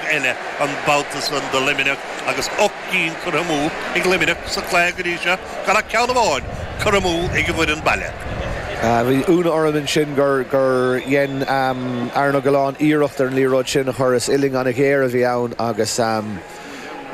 eile an babhta san do Luimneach agus ocht gcinn curtha amú ag Luimneach sa chluiche go dtí seo, gan ach ceann amháin curtha amú ag an bhfoireann baile. Bhí ionadh orm ansin gur dhein Aaron Gillane iarracht ar an liathróid sin a chur, is uillinn an-ghéar a bhí ann agus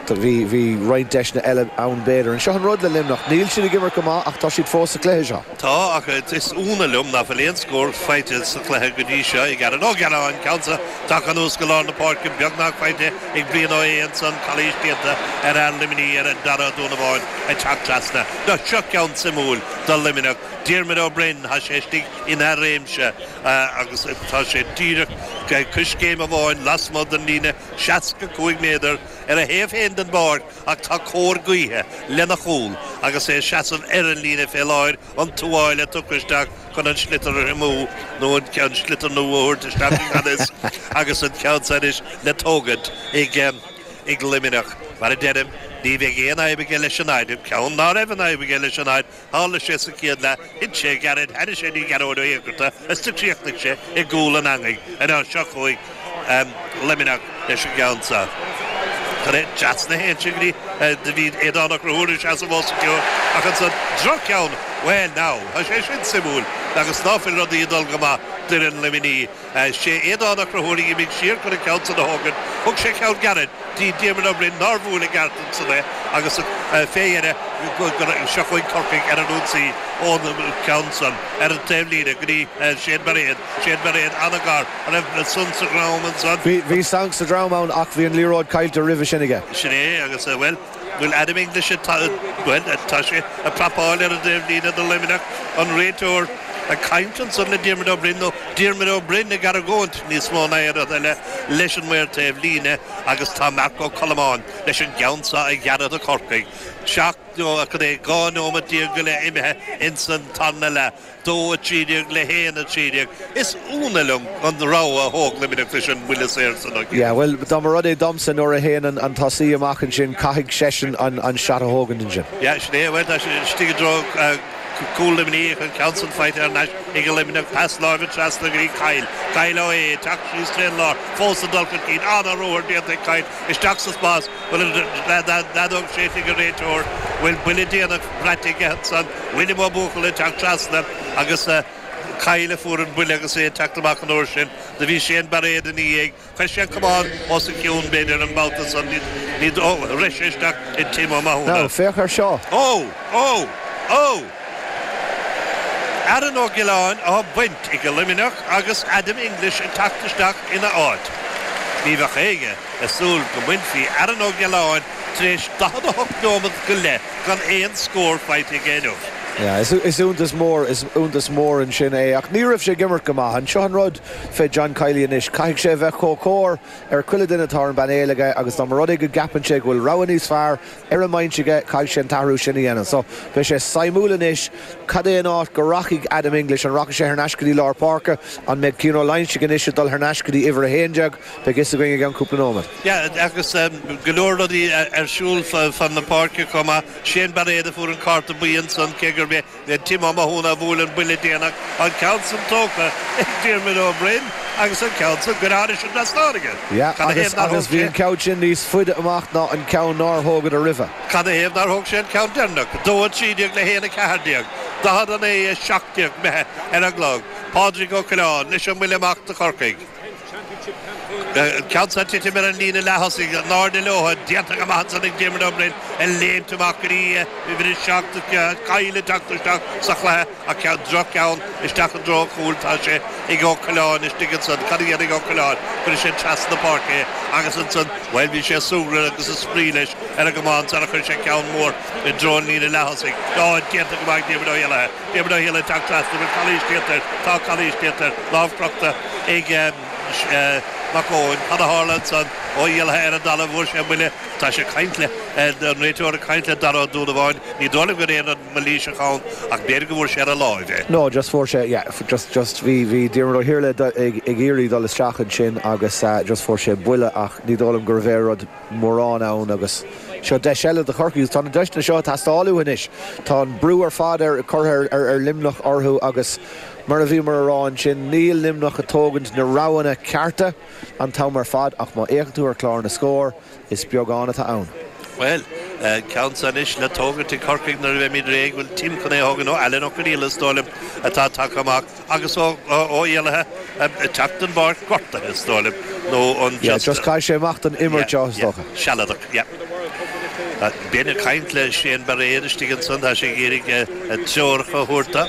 bhí roinnt deiseanna eile ann b'fhéidir. Seo an rud le Luimneach, níl siad ag imirt go maith ach tá siad fós sa chluiche seo. Tá, ach is ionadh liom ná fuil aon scór faighte sa chluiche go dtí seo ag Aaron Ó Gealáin, an ceann so tagtha anuas go lár na páirce, beagnach faighte ag Brian Ó hAodha ansan, calaois déanta ar fhear Luimnigh ar Dara Ó Donnabháin ag teacht trasna. Now seo ceann suimiúil do Luimneach, Diarmuid Ó Broin, tá sé istigh ina réimse agus tá sé díreach coiscéim amháin lasmuigh den líne 65 méadar ar a thaobh féin den bpáirc, Ach tá cóir gaoithe lena chúl agus é ag seasamh ar an líne fé láthair, an tuáille tugtha isteach chun an sliotar a thriomú, nó an sliotar nua a thabhairt isteach i ngan fhios, agus an ceann seo anois le tógaint ag Luimneach. Mar a deirim, ní bheidh aon fhadhb aige leis an fhaid, ceann ná raibh aon fhadhb aige leis an fhaid, Tharla sé sa chéad leath, thit sé, gairid, tháinig sé go dtí Gearóid Ó hÉigearta, is do chríochnaigh sé i gcúl an eangaigh. Ar ao' seo chugainn Luimneach leis an gceann seo. Tar éis dreas na haon singlí do bhí Aodán Ó Conchúir ag seasamh os a chionn ach ansan, droch-cheann! Bhuel, now, tá sé sin suimiúil agus ná fuil rudaí ag dul go maith d'fhoireann Luimnigh. Sé Aodán Ó Conchúir a dh'imigh siar chun an ceann san a thógaint, thug sé ceann gairid do Diarmaid Ó Broin nár bhuail i gceart ansan é, agus fé dheireadh seo chugainn Corcaigh ar an ionsaí ón cheann san, ar an taobhlíne, go dtí Séan Bairéad, Séan Bairéad an-ghar an raibh sonc sa drom ansan? Bhí sonc sa drom ann ach bhí an liathróid caillte roimhe sin aige. Sin é agus, bhuel. Bhuel Adam English atá, bhuel, tá sé ag prapáil ar an dtaobhlíne do Luimneach, an réiteoir ag caint ansan le Diarmuid Ó Broin, nó Diarmaid Ó Broin ag argóint níos mó ná aon rud eile leis an maor taobhlíne agus tá Marc Ó Colmáin leis an gceann seo a ghearradh do Chorcaigh, seacht nó cad é 12 nóimeat go leith imithe ins an tarna leath. 2, 13 le 1, 13. Is ionadh liom an rogha a thóg Luimneach leis an mbuille saor san a. Yeah, bhuel, dá mba rud é domsa, nuair a théann an tosaí amach ansin, caithfidh seisean an shot a thógaint ansin. Yeah, sin é, bhuel, tá sé istigh i dtreo chúl Luimnigh, an ceann san faighte thar n-ais ag Luimneach, pas láimhe trasna go dtí Kyle, Kyle Ó hAodha, teacht síos trén lár, fós ag dul chun cinn, an-ruathar déanta ag Kyle, isteach sa spás bhuel an fheadóg séidte ag an réiteoir bhuel buille déanach braite aige ansan William Ó Buachalla ag teacht trasna agus Kyle a fuair an buille agus é ag teacht amach an uair sin do bhí Séan Bairéad ina dhiaidh chuir sé an camán os a chionn b'fhéidir an babhta san do rith sé isteach i Tim Ó Mathúna. Now féach air seo. Ó! Ó! Ó! Aaron Ó Giolláin á bhaint ag Luimneach agus Adam English ag teacht isteach ina áit. Ní bheadh éinne ag súil go mbainfí Aaron Ó Giolláin tar éis 48 nóiméad go leith gan aon scór faighte aige inniu. Is iontas mór, is iontas mór ansin é ach ní raibh sé ag imirt go maith. An seo an rud fé John Kiely anois? Caithfidh sé a bheith chomh cóir ar chuile duine atá ar an bpainéal aige agus dá mba rud é go gceapann sé go bhfuil rogha níos fearr ar an mbinse aige, caithfidh sé an t-athrú sin a dhéanamh so beidh sé suimiúil anois cad é an áit go rachaidh Adam English, an rachaidh sé thar n-ais go dtí lár páirce, an mbeidh Cian Ó Loinsigh anois ag dul thar n-ais go dtí uimhir a haon déag, beidh fhios againn i gceann cúpla nóiméad. Yeah agus go leor rudaí ar siúl fan na páirce chomh maith, Shane Bairéad a fuair an cárta buí ansan cé gurb é Tim Ó Mathúna a bhuail an buille déanach, an ceann san tógtha ag Diarmuid Ó Broin agus an ceann san curtha thar an trasnán aige agus bhí an ceann sin níos faide amach ná an ceann nár thógadar roimhe. Cad ina thaobh nár thóg sé an ceann deireanach? 2 a 13 le 1 a 14, 40 a 9 a 17 imithe ar an gclog, Pádraig Ó Coileáin, leis an mbuille amach do Chorcaigh. Ceann san ag titim ar an líne leath-thosaigh, in airde leotha, déanta go maith ansan ag Diarmuid Ó Broin, ag léimt amach go dtí uimhir 7, Kyle, ag teacht isteach sa chluiche, ach ceann droch-cheann isteach i dtreo an chúil, tá sé ag Ó Coileáin istigh ansan, cad a dhéanfaidh Ó Coileáin, cuirfidh sé trasna páirce é, agus ansan, bhuel, bhí sé ag súgradh agus ag spraoi leis ar an gcamán sara chuir sé ceann mór i dtreo an líne leath-thosaigh, á, déanta go maith ag Diarmuid Ó hÉalaithe. Diarmuid Ó hÉalaithe teacht trasna, bhfuil calaois déanta air, tá calaois déanta air, lámh crochta ag Mac Eoin, cad a tharla ansan? Ó hÉalaithe ar an dtalamh, fuair sé buille, tá sé ag caint le, an réiteoir ag caint le Dara Ó Donnabháin, ní dóigh liom go raibh aon rud mailíseach ann ach b'fhéidir go bhfuair sé ar a láimh é. No, just fuair sé, yeah, just, just, bhí, bhí Diarmuid Ó hIarlaithe ag iarraidh dul isteach ansin agus just fuair sé buille ach ní dóigh liom go raibh aon rud. mórán ann agus seo deis eile do Chorcaigh agus tá na deiseanna seo ag teastáil uathu anois. Tá an brú ar fad curtha ag Luimneach orthu agus, mar a bhíomar a rá ansin, níl Luimneach ag tógaint na roghanna cearta an t-am ar fad ach má fhéachann tú ar chlár na scór, is beagán atá ann. Bhuel, ceann san anois le tógaint ag Corcaigh nuair a bheimid réidh. Bhfuil Tim chun é a thógaint, nó Alan Ó Conghaile, is dóigh liom, atá tagtha amach? agus Ó hÉalaithe ag teacht den bpáirc gortaithe, is dóigh liom, nó an just. just caith sé amach den imirt, yeah, is dócha. sealadach, yeah. Ben ag caint le Shane Bairéad istigh ansan, tá sé ag iarraidh treoracha a thabhairt dó,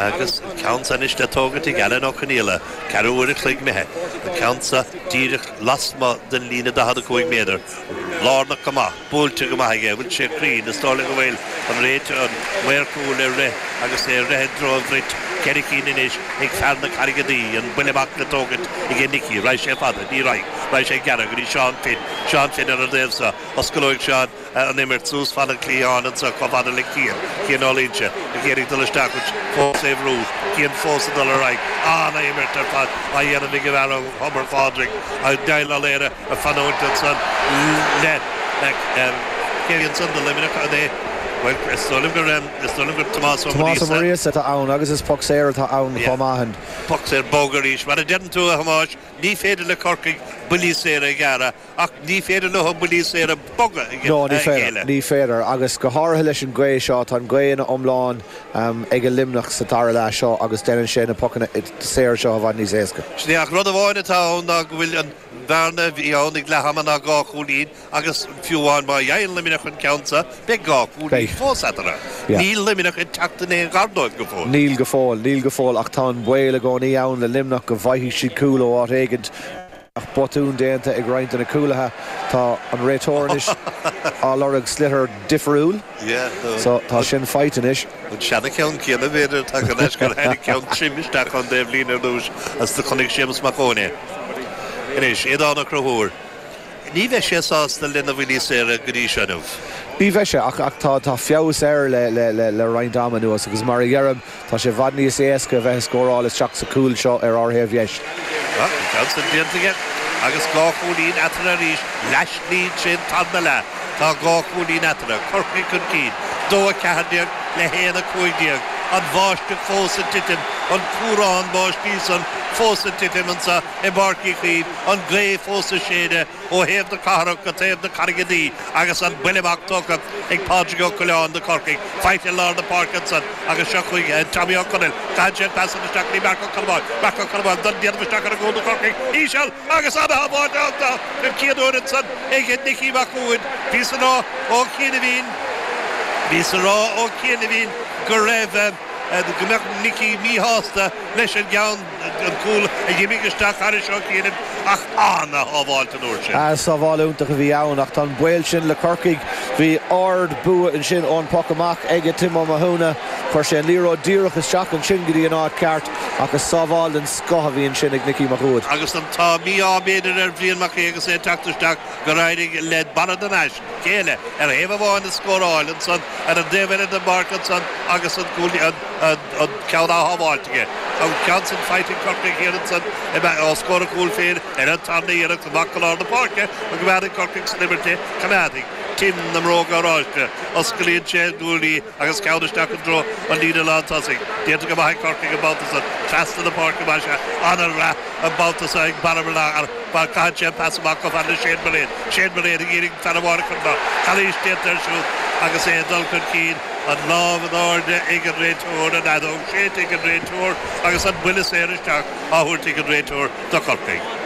agus an ceann san anois le tógaint ag Alan Ó Conghaile, ceathrú uair a chloig imithe, an ceann san díreach lasmuigh den líne 45 méadar, lárnach go maith. buailte go maith aige, bhfuil sé cruinn, is dóigh liom go bhfuil, an réiteoir, an maor cúil, ag rith agus é ag rith i dtreo an bhrait, ceithre cinn anois ag fear na Carraige Duí, an buille amach le tógaint aige Nicky, raghaidh sé fada, ní raghaidh, raghaidh sé gearr, go dtí Seán Finn, Seán Finn ar an taobh so, oscalóidh Seán an imirt suas fan an chliatháin anseo chomh fada le Cian, Cian Ó Loingsigh, ag iarraidh dul isteach, ach fós á bhrú, Cian fós ag dul ar aghaidh, an-imirt ar fad á dhéanamh ag an bhfear ó Thobar Phádraig, an Gael Lallaire, a chanúint ansan le cúilín ansan do Luimneach an ea? Bhuel is dóigh liom gur is dóigh liom gur Tomás Ó Muiríosa. Tomás Ó Muiríosa atá ann agus is poc saor atá ann chomh maith. Poc saor bog arís. Mar a deireann tú a Thomáis, ní féidir le Corcaigh buillí saora a ghéilleadh ach ní féidir leo buillí saora boga a ghéilleadh. No, ní féidir, ní féidir agus go háirithe leis an gaoth seo, tá an gaoth ina iomlán ag Luimneach sa dara leath seo agus déanann sé na pocanna saora seo i bhfad níos éasca. Sin é ach rud amháin atá ann ná go bhfuil an. bearna a bhí ann ag leath ama ná dhá chúilín agus fiú amháin má fhaigheann Luimneach an ceann seo, beidh dhá chúilín fós eatarthu. Níl Luimneach ag teacht in aon ghar dóibh go fóill. Níl go fóill. Níl go fóill ach tá an baol i gcónaí ann le Luimneach go bhfaighidh siad cúl ó áit éigint. Bheadh botún déanta ag roinnt de na cúlaithe. Tá an réiteoir anois ag lorg sliotar difiriúil so tá sin faighte anois. An seana-cheann céanna, b'fhéidir, atá aige cé gur tháinig ceann tirim isteach ón dtaobhlíne ar dtúis, agus do chonaic Séamus Mac Eoin é. Anois, Aodán Ó Conchúir, ní bheidh sé sásta lena bhuillí saora go dtí seo inniu. Ní bheidh sé, ach tá feabhas air le roinnt ama anuas, agus mar a dheirim, tá sé i bhfad níos éasca a bheith ag scóráil isteach sa chúl seo ar ár thaobh dheis. Bhuel, an ceann sin déanta aige, agus dhá chúilín eatarthu arís, leath-slí tríd an tarna leath. Tá dhá chúilín eatarthu, Corcaigh chun cinn, 2:14 le 1:15, an bháisteach fós ag titim, an ceobhrán báistí san fós ag titim anseo i bPáirc Uí Chaoimh, an ghaoth fós ag séideadh ó thaobh na cathrach go taobh na Carraige Duí agus an buille amach tógtha ag Pádraig Ó Coileáin do Chorcaigh. Faighte i lár na páirce ansan agus seo chuig Tommy Ó Conaill. Caitheann sé an pas san isteach go dtí Marc Ó Colmáin. Marc Ó Colmáin ag dul díreach isteach ar an gcúl do Chorcaigh. Íseal! Agus ana shábháilt déanta an chéad uair ansan ag Nicky Mac Uaid, bhíos á rá ó chianaibhín, bhíos á rá ó chianaibhín go raibh, go mbeadh Nicky míshásta leis an gceann, an cúl a dh'imigh isteach thairis ó chianaibh, ach ana shábháilt an uair sin. Sábháil iontach a bhí ann ach tá an baol sin le Corcaigh. Bhí ard bua ansin ón poc amach aige Tim Ó Mathúna. Chuir sé an liathróid díreach isteach ansin go dtí an áit ceart ach is sábháil den scoth a bhíonn sin ag Micí Mac Uaid. Agus an t-ádh, mí-ádh b'fhéidir, ar Bhrian Mac Aoidh agus é ag teacht isteach gur éirigh le Barra de Nais, cúilín ar thaobh amháin a scóráil ansan ar an dtaobh eile don bpáirc ansan agus an ceann a shábháilt aige. Tá an ceann san faighte ag Corcaigh thiar ansan os comhair a chúl féin ar an tarna iarracht amach go lár na páirce go mbeireann Corcaigh san imirt é. Coimeádaí Tim na mbróga oráiste. Osclaíonn sé a ghuaillí. Agus ceann isteach i dtreo an líne lántosaigh, déanta go maith ag Corcaigh an babhta san. Trasna na páirce maith is ea ana-rath an babhta san ag Barra Mhileadh mar caitheann sé an pas amach chomh fada le Shane Mullane. Shane Mullane ag iarraidh an fear amháin a chur amach. Calaois déanta air siúd agus é ag dul chun cinn. An lámh in airde ag an réiteoir, an fheadóg séidte ag an réiteoir agus an buille saor isteach á thabhairt ag an réiteoir do Chorcaigh.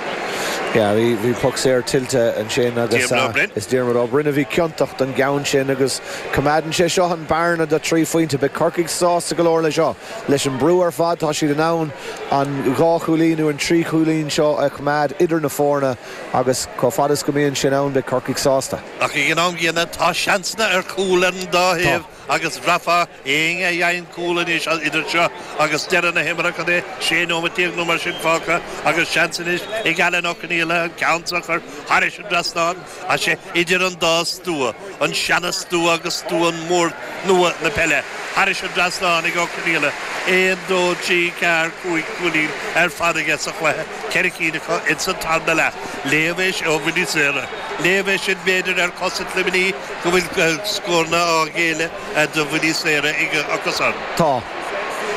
Bhí puc saor tuillte ansin agus is Diarmuid Ó Broin a bhí ciontach don gceann sin agus Coimeádann sé seo an bhearna de thrí phointe. Beidh Corcaigh sásta go leor leis seo. Leis an brú ar fad, tá siad in ann an dhá chúilín nó an trí chúilín seo a choimeád idir na foirne agus chomh fada is go mbíonn sin ann, beidh Corcaigh sásta. Ach ag an am gcéanna, tá seansanna ar chúil ar an dá thaobh agus bhraithfeá éinne a gheobhadh cúl anois idir seo agus deireadh na himeartha, cad é, 16 nóimeat nó mar sin fágtha agus seans anois ag Alan Ó Conghaile an ceann seo a chur thairis an dtrasnán. Tá sé idir an dá stua, an seana-stua agus stua mór nua na peile, thairis an dtrasnán ag Ó Conghaile, aon, dó, trí, ceathair, cúig chúilín ar fad aige sa chluiche, ceithre cinn acu ins an tarna leath. Léamh é seo ó bhuillí saora. Léamh é sin, b'fhéidir, ar chosaint Luimnigh go bhfuil scóranna á ghéilleadh do bhuillí saora aige acusan. Tá.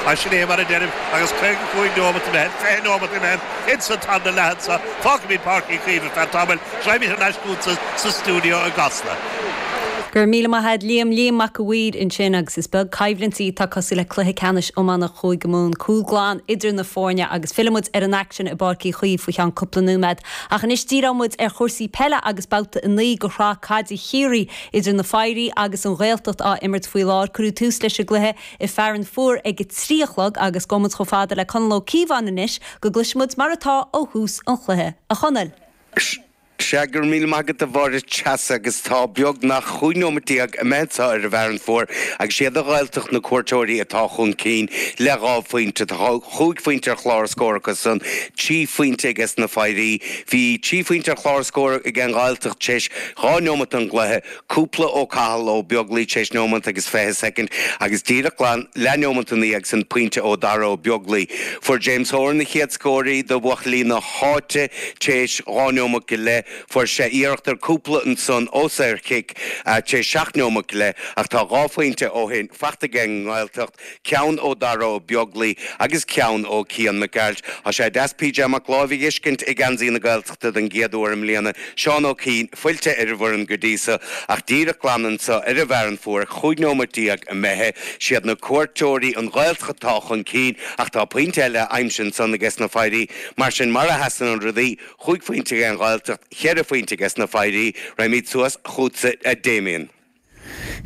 Ach sin é mar a deirim agus caoga cúig nóimeat imithe, fiche nóimeat imithe ins an tarna leath anseo. Fágfaimid Páirc Uí Chaoimh ar feadh tamaill Gabhaimid thar n-ais chútsa sa stiúideo i gCasla. Go raibh míle maith a'd Liam Liam Mac a' Mhaoir ansin agus is beag coimhlintí atá cosúil le Cluiche Ceannais Iomána Chúige Mumhan, cúl glan idir na foirne agus fillfidh muid ar an aicsean i bPáirc Uí Chaoimh faoi cheann cúpla nóiméad ach anois díreoidh muid ar chúrsaí peile agus Babhta 9 de Shraith Caide Chiarraí idir Na Fairí agus An Ghaeltacht á imirt faoi láthair. Cuireadh tús leis an gcluiche i Fearann Fuar ag a trí a chlog agus gabhfaidh muid chomh fada le Conall Ó Cíobháin anois go gcloisfidh muid mar atá ó thús an chluiche. A Chonaill! Sea, go raibh míle maith agat, a Mháire Treasa, agus tá beagnach chúig neomat déag imithe anseo ar an bhFearann Fuar agus is iad an Ghaeltacht na cuairteoirí atá chun cinn le dhá phointe. Tá chúig phointe ar chlár scóir acu san, trí phointe aiges na Fairí. Bhí trí phointe ar chlár scóir ag an nGaeltacht théis dhá neomat don gcluiche. cúpla ó Chathal Ó Beaglaoi téis neomant agus fiche soicind agus díreach glan leathneomant ina dhiaidh san pointe ó Dhara Ó Beaglaoi, Fuair James Horan an chéad scór do bhuachaillí na háite téis dhá neomant go leith, fuair sé iarracht ar cúpla ansan ó saorchic téis seacht neomant go leith ach tá dhá phointe ó shin fachta aige an nGaeltacht, ceann ó Dara Ó Beaglaoich agus ceann ó Cian Mac Gearailt. Tá sé deas PJ Mac Láimh a fheiscint i geansaí na Gaeltachta don gcéad uair i mbliana, Seán Ó Cuinn fillte ar an bhfoireann go dtí so, ach díreach glan anso ar an bhFearann Fuar, 15 nóimeat imithe. Siad na cuairteoirí an Ghaeltacht atá chun cinn, ach tá pointe eile aimsithe ansan aiges na Foidhrí. Mar sin, mar a sheasann an rudaí, chúig phointe aige an Ghaeltacht, cheithre phointe aiges na Foidhrí. Raghaimid suas chughatsa, a Damien.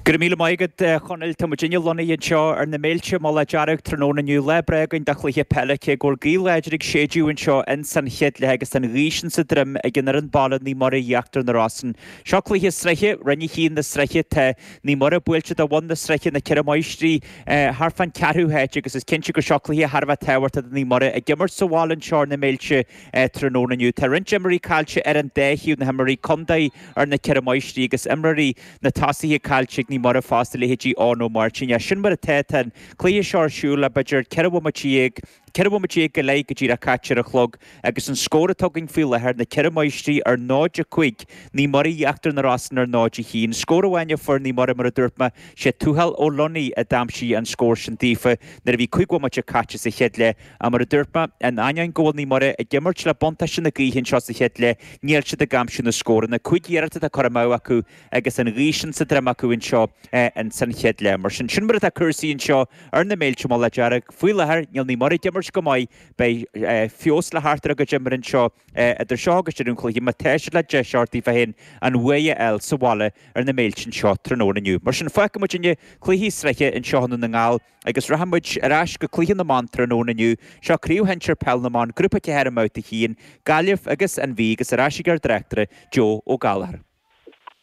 Go raibh míle maith agat a Chonaill. Tá muid inniu lonnaithe anseo ar na Méilte. Mullach Dearg tráthnóna inniu, lá breá againn do chluiche peile, cé go bhfuil gaoth láidir ag séideadh anseo ins an chéad leath agus tá an ghaoth sin sa droim ag an fhoireann baile Naomh Muire Íochtar na Rosann. Seo cluiche sraithe Roinn 1 na sraithe. Tá Naomh Muire buailte do bhun na sraithe, Na Ceithre Máistrí, thart fán ceathrú háit agus is cinnte go seo cluiche thar a bheith tábhachtach do Naomh Muire ag imirt sa bhaile anseo ar na Méilte. é tráthnóna inniu. Tá roinnt imreoirí caillte ar an dá thaobh, na himreoirí contae ar na Ceithre Máistrí agus imreoirí na tosaithe caillte ag Naomh Muire fosta, leithéidí Eoin Ó Máirtín. Ach sin mar atá, tá an cluiche seo ar siúl le b'fhéidir ceithre bhomaite dhéag, ceithre bhomaite dhéag go leith go díreach caite ar an chlog agus an scór atá againn faoi láthair, na Ceithre Máistrí ar 0, 5, Naomh Muire, Íochtar na Rosann ar 0, 1. Scór amháin a fuair Naomh Muire mar a dúirt mé, sé Tuathal Ó Luinigh a d'aimsigh an scór sin daofa nuair a bhí cúig bhomaite caite sa chéad leath. Ach mar a dúirt mé, in ainneoin go bhfuil Naomh Muire ag imirt le buntáiste na gaoithe anseo sa chéad leath, níl siad ag aimsiú na scóranna. Cúig iarracht atá curtha amú acu agus an ghaoth sin sa droim acu anseo in san chéad leath. Mar sin, sin mar atá cúrsaí anseo ar na Méilte, Mullach Dearg. Faoi láthair, níl Naomh Muire ag imirt go maith. Beidh feabhas le theacht ar a gcuid imeartha anseo idir seo agus deireadh an chluiche má tá siad le deis a thabhairt díobh féin an bhuaidh a fháil sa bhaile ar na Méilte anseo tráthnóna inniu. Mar sin, fágfaidh muid inniu cluichí sraithe anseo i nDún na nGall. Agus rachaidh muid ar ais go cluiche na mban tráthnóna inniu. Seo craobh shinsir Peil na mBan, Grúpa 4 i mBabhta 1, Gaillimh agus An Mhí agus ar ais ag ár dtráchtaire, Joe Ó Gallchóir.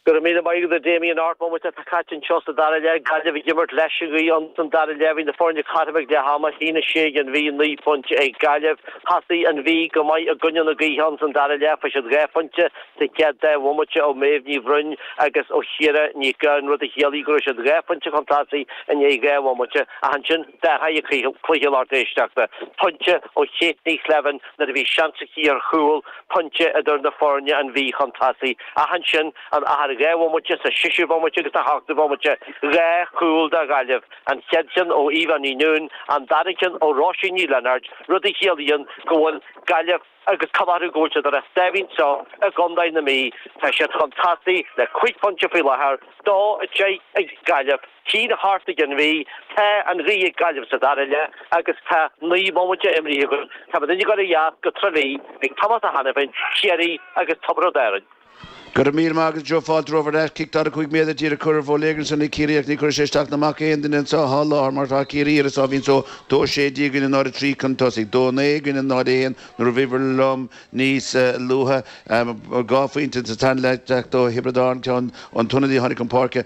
Go raibh míle maith agat a Damien, ocht mbomaite atá caite anseo sa dara leath, Gaillimh ag imirt leis an ghaoth ins an dara leath, bhí na foirne cothrom ag leath ama, 1, 6 ag An Mhí, 9 phointe ag Gaillimh. Thosaigh An Mhí go maith i gcoinne na gaoithe ins an dara leath, fuair siad dhá phointe, Sa chéad dá bhomaite ó Mhéabh Ní Bhroin agus ó Chiara Ní Ghabhann, rud a chiallaigh go raibh siad dhá phointe chun tosaigh i ndiaidh dhá bhomaite ach ansin d'athraigh an cluiche a lucht éisteachta, pointe ó Kate Ní Shléibhín nuair a bhí seans aici ar chúl, pointe idir na foirne an Mhí chun tosaigh ach ansin in achar dhá bhomaite sa seisiú bomaite agus sa hochtú bomaite, dhá chúl do Ghaillimh, an chéad cheann ó Eva Ní Nuáin, an dara ceann ó Róisín Ní Lionáird, rud a chiallaíonn go bhfuil Gaillimh. agus cuma orthu go bhfuil siad ar a sáimhín anseo i gContae na Mí, tá siad chun tosaigh le cúig phointe faoi láthair, dó a deich ag Gaillimh, a haon a hocht ag an Mhí, tá an ghaoth ag Gaillimh sa dara leath agus tá naoi mbomaite imeartha againn, tá muid ag gabháil ar ais go Trá Lí ag Tomás Ó hAiniféin, Ciarraí agus Tiobraid Árann. Go raibh míle maith agat, a Joe. Fáilte romhat ar ais. Cic 45 méadar díreach curtha ar bóiléagar ansan ag Ciarraí ach ní chuirfidh sé isteach ná amach ar aon duine anseo fá láthair mar tá Ciarraí ar a sáimhín só. Dó a sé déag i gcoinne 0 a trí cun tosaigh. Dó a naoi i gcoinne 0 a haon nuair a bhíobhair liom níos luaithe. Dhá phointe sa tarna leath ag teacht ó Thiobraid Árann ceann ón ionadaí a tháinig chun páirce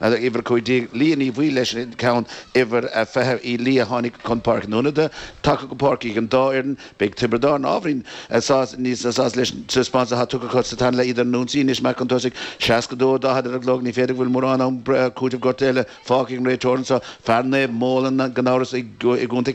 Leagan uimhir a cúig déag, Liath Ní Bhaoill leis an gceann uimhir a fiche, Uí Liatha tháinig chun páirce na hionadaithe tagtha chun páirce ag an dá fhoireann. Beidh Tiobraid Árann ábhairín níos sásta leis an taispeántas atá tugtha acu sa tarna leath iad ar an ionsaí anois amach chun tosaigh, 62, 40 ar an gclog ní féidir go bhfuil mórán am breise cúiteamh gortaithe eile fágtha ag an réiteoir anseo, fear Naomh Molann gan amhras i gContae